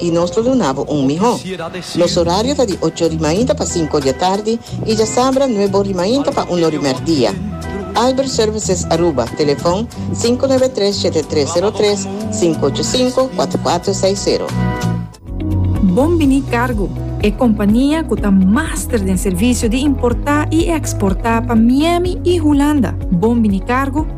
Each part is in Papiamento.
i nos lo duna bo un mihó. Nos orario ta di ocho ri mainta pa sinku di atardi i djasabra nuebo ri mainta pa uno ri mèrdia. Albert Services Aruba, telefòn sinku nuebe tres shete tres sero tres, sinku ocho sinku, kuater kuater seis sero. Bon Biní Cargo, e kompania ku ta master den servisio di importá i eksportá pa Miami i Hulanda. Bon Biní Cargo,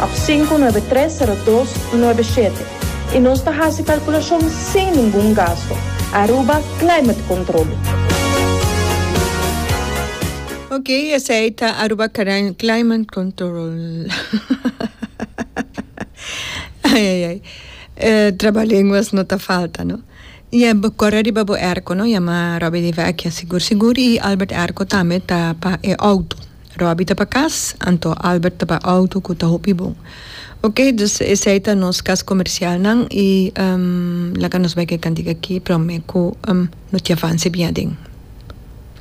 Ap sinku nuebe tres sero dos nuebe shete i nos ta hasi kalkulashon sin ningun gasto. Aruba Climate Control. Ok, esei ta Aruba Climate Control. Trabalenguas no ta falta no. I e corre riba bo erco no, yama Robby di Vecchia sigur sigur i Albert Erco tambe ta pa e auto. Robbie ta pa cas, anto Albert ta pa auto cu ta hopi bon. Ok, dus esey ta nos cas comercialnan y laga nos bay ke cantiga aki prome cu no ti avance bia aden.